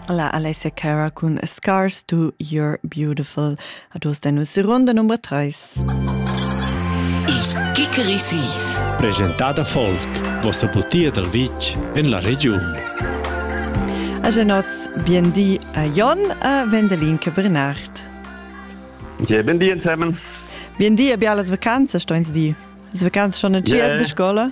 La Alessia Cara cun Scars to Your Beautiful a dus den uss Runde Nummer 3. Il Kikerisis. Presentada Folk, vossa butia dal vitg en la regiun. A genots, biendi a Jon a Vendelin che Bernard. Ja, biendi insemen. Biendi a bialas vacanzas, stoins di. Vacanzas schon a yeah. de scola?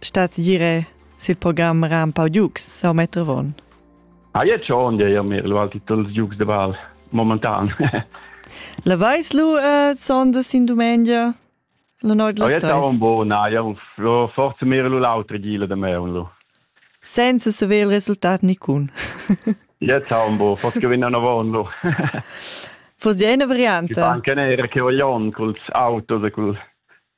Stats dire sil program ra un pau giugs sau Metrovon? Ah, jetzt schon, ja, ja, mir Valtitel giugs de Val momentan. La vais lu äh, sondes in dumengia? La noit las tres? Ah, jetzt un bo, na, ja, forse mir lu l'autre gile de me un lu. Senza saver il resultat nicun. Jetzt un bo, forse che venna una von lu. Fosse eine Variante? Che anche nera che voglion col autos e col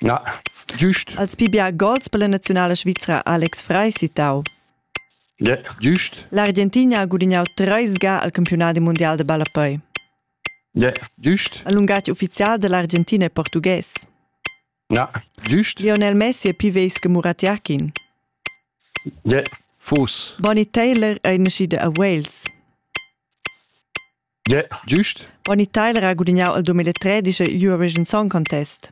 Ja. Giust. Als pi bia gols per la naziunala svizra Alex Frei citau. Yeah. Giust. L'Argentina ha gudignau treis ga al campiunadi mundial de ballapei. Yeah. Giust. El lungatg ufficial dell'Argentina e portughes. Ja. Giust. Lionel Messi e piveis che Muratiakin. Yeah. Fus. Bonnie Taylor ei nascida a Wales. Giust? Ronny Teiler ha gudignau il 2013 Eurovision Song Contest.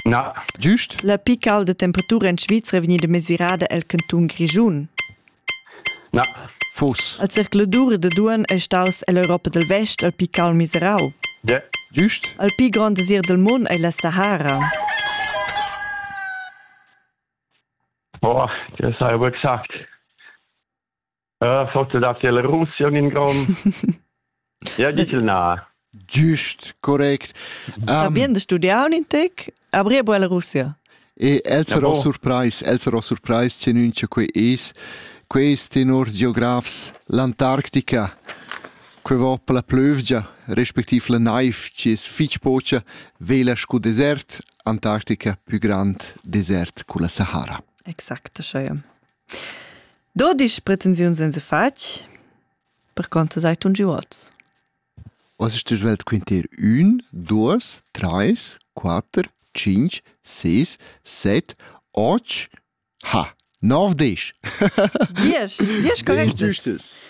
Na. Giust? La pical da temperatura en Svizra vegnida mesirada el cantun Grischun. Na. Fuss. El circuladur da Duan ei staus ell'Europa del Vest el pical miserau. Ja. Giust? El pi grand desir del mund ei la Sahara. Boah, das habe ich aber gesagt. äh, forse dat ja la Russia in Grund. ja, dici na. Giust, correct. Um, Va bien de studiar un intec, abrir a la Russia. E el sarò ja, surprais, el sarò surprais, cenun che quei es, quei es tenor geografs l'Antarctica, que va per la plövgia, respektiv la naif, ci es fitch pocia, vela scu desert, Antarctica più grand desert cu la Sahara. Exacto, schau. Dodisch pretensiuns ens fatg perconter sei tun giuots. Was ist die Welt quintier un, dos, treis, quater, cinc, seis, seit, och, ha, nov, desch. Diesch, diesch korrekt. Düstes.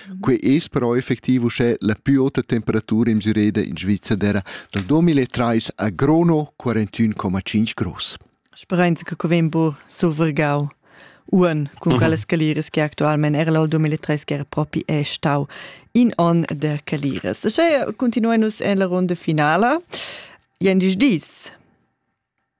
Quei es però effectiv uschè la plü ota temperatura in Msüreda in Svizzera dal 2003 a Grono 41,5 Grus. Speranza che vegn bu survergau Uan, cun quelles caliras che actualmente era l'al 2003 che era proprio è stau in on de caliras. Sche continuenus en la ronda finala, Jen dis dis.